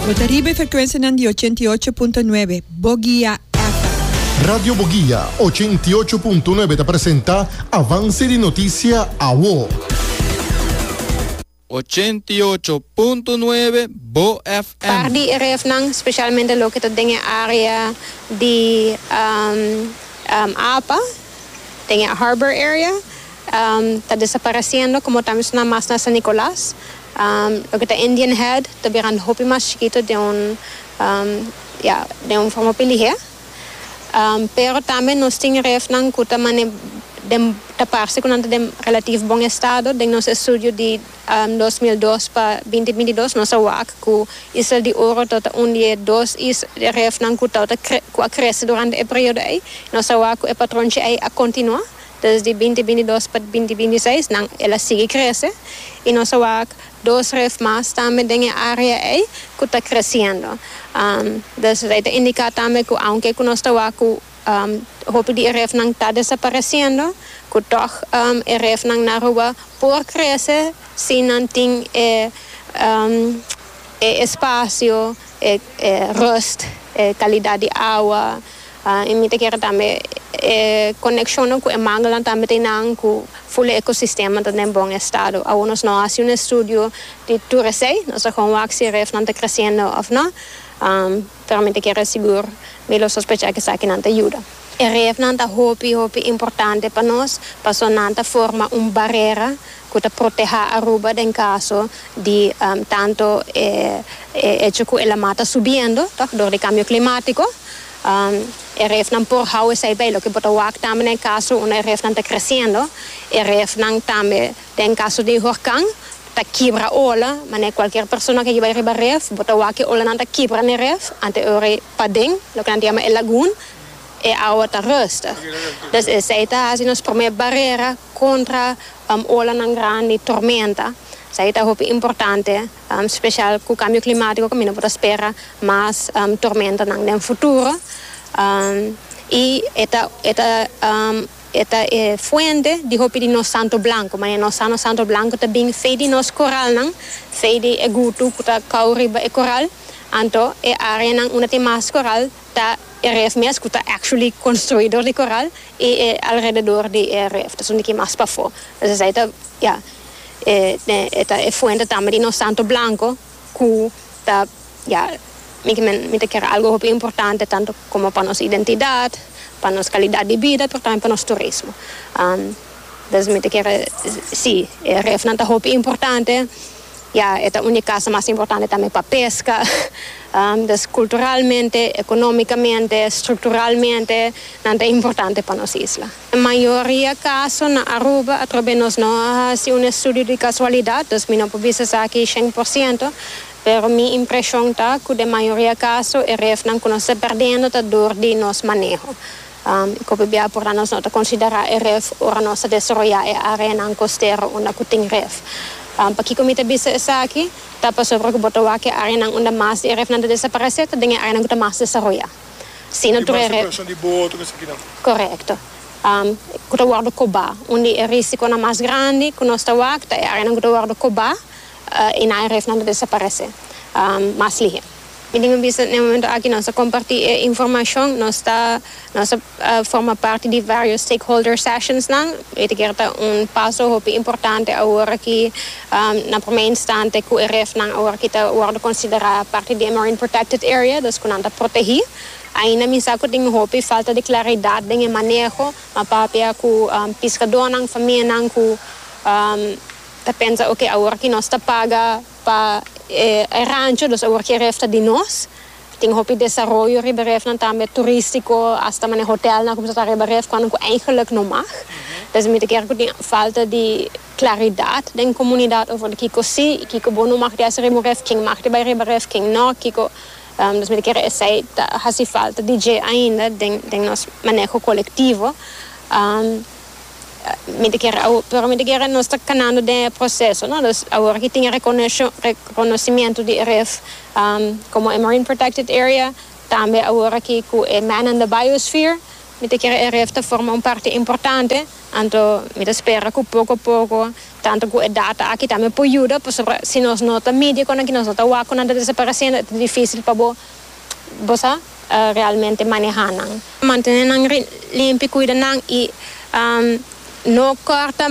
Bo ta riba e frekwensianan di ochenta i ocho punto nuebe Bogia FM. Radio Bogia ochenta i ocho punto nuebe ta presenta Avance di Noticia Awo. Ochenta i ocho punto nuebe Bo FM. Par di e refnan, specialmente loke ta den e area di apa, den e harbor area, Ta desapareciendo como ta mensona mas na San Nicolas. Loke ta Indian Head ta birando hopi mas chikito den un ya den un forma hopi lihé. Pero tambe nos tin refnan cu ta mane den ta parce cu nan ta den relativo bon estado. Den nos estudio di dos mil dos pa binti binti dos nos a wak cu Isla di Oro ta ta un di e dos is refnan cu ta cu a crece durante e periodo ey. Nos a wak cu e patron dje ey a continua. Desde binti binti dos pa binti binti seis nan el a sigui crece y nos a wak dos ref mas tambe den e area ey cu ta creciendo. Desde ey ta indica tambe cu aunke cu nos ta wak cu hopi di e ref nan ta desapareciendo cu toch e ref nan na Aruba por crece si nan tin e e espacio, e rust, e calidad di awa, I mi ta kere tambe e konekshonnan ku e manguelan tambe ta e nan ku ful e ekosistema ta den bon estado. Awor nos no a hasi un estudio di tur esei, nos a kon wak si e refnan ta kresiendo òf no, pero mi ta kere sigur, mi lo sospecha ku esakinan ta yuda. E refnan ta hopi hopi importante pa nos paso nan ta forma un barera ku ta protehá Aruba den kaso di tanto e echo ku e laman ta subiendo, tòg, dor di kambio klimatiko, E refnan por hou esei bay, loke bo ta wak tambe na e caso unda e refnan ta creciendo. E refnan tambe den caso di horcan ta kibra ola, manera cualkier persona ke yibay riba ref bo ta wak ke olanan ta kibra n'e ref anto e ora paden loke nan ta yama e lagoon e awa ta ruste. Des esei ta haci nos prome barera contra olanan grandi, tormenta. Esei ta hopi importante. Speshal ku kambio klimatiko kaminda bo ta spera mas tormentanan den futuro i e ta e ta e ta e fuente di hopi di nos santo blanku manera nos sa nos santo blanku ta bin fei di nos koralnan fei di e gutu ku ta kau riba e koral anto e areanan unda tin mas koral ta e ref mes ku ta actually konstruido di koral i e alrededor di e ref ta sumiti ki mas pafó entonces esei ta Ya, e ne e ta e fuente tambe di nos Santo Blanco cu ta, ya, mi ki mi ta kere algo hopi importante tanto como pa nos identidad, pa nos calidad di bida, pero tambe pa nos turismo. Entonces mi ta kere, si, e refnan ta hopi importante, ya, e ta un di casa mas importante tambe pa pesca, entonces culturalmente, economicamente, structuralmente nan ta importante pa nos isla. E mayoria kaso na Aruba atrobe nos no a hasi un estudio di kasualidat, dus mi no por bisa esaki shen por siento, pero mi impreshon ta ku den mayoria kaso e refnan ku nos ta perdendo ta dor di nos maneho. I kope bia por ta nos no ta konsiderá e ref ora nos ta desaroyá e áreanan kostero unda ku tin ref? Pakiko mi ta bisa esaki? Ta pasobra ku bo ta wak e áreanan unda mas di e refnan ta desaparesé ta den e áreanan ku ta mas desaroyá. Si no tur e res. Di mas separacion di boot cu esakina. Corecto. Cu ta wordo coba. Un di e risiconan mas grandi cu nos ta wak ta e areanan cu ta wordo coba y na e resnan ta desaparece mas lihe. Mi tin cu bisa n'e momento aki nos ta comparti e informacion, nos ta nos ta forma parti di varios stakeholder sessionsnan y ta kier ta un paso hopi importante awor aki na promé instante ku e refnan awor ki ta wòrdu konsiderá parti di e Marine Protected Area, dus ku nan ta protegí. Ainda mi sa ku tin un hopi falta di klaridat den e maneho, ma papia ku piskadónan, famianan ku ta pensa oke awor ki nos ta paga pa e rancho, dus awor ki e ref ta di nos. Tin hopi desaroyo riba e refnan tambe, turístiko, asta manera hotelnan ku ta riba e ref, kòrda ku eingeluk no mag. Desde mi ta kere ku tin falta di. claridad den comunidad over di kico si y kico bo no mag di haci riba un ref, ken mag di bay riba ref, ken no, kico nos mester kere esey ta haci falta di dje ainda den nos maneho colectivo. Mi ta kere awor, pero mi ta kere nos ta canando den e proceso, no, dus awor aki tin e reconocimiento di e ref como e marine protected area, tambe awor aki cu e man and the biosphere, mi ta kere e ref ta forma un parti importante. Anto mi ta spera ku poko poko, tantu ku e data aki tambe por yuda, pasobra si nos no ta midi e kosnan ki nos no ta wak ku nan ta desaparesiendo e ta difisil pa bo bo sa realmente maneha nan. Mantene nan limpi, kuida nan i no kòrta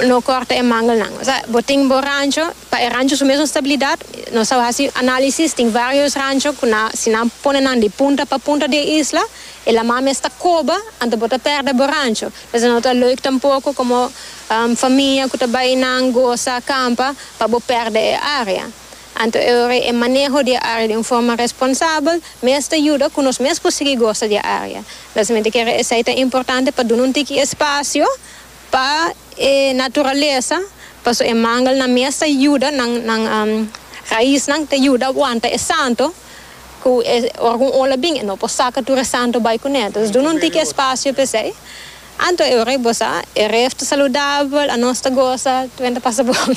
no kòrta e mangelnan. Osea bo tin bo rancho, pa e rancho su mesun stabilidat, nos a hasi analisis, tin varios rancho ku nan si nan pone nan di punta pa punta di e isla, E lama mes ta koba, anto bo ta pèrdè bo rancho. P'esei no ta leuk tampoko komo famia ku ta bai nan gosa kampa pa bo pèrdè e área. Anto e ora e maneho di e área di un forma responsabel mes ta yuda ku nos mes por sigui gosa di e área. Mesamente kere esei ta importante pa duna un tiki espasio. Pa e naturalesa, paso e mangelnan mes ta yuda nan, nan raisnan ta yuda aguanta e santo, cu e, ora cu un ola bin e no por saca tur e santo bay cune. Entonces duna un tiki espacio p'esey. Anto e ora cu bo sa, e ref ta saludabel, anos ta gosa, twen ta pasa bon.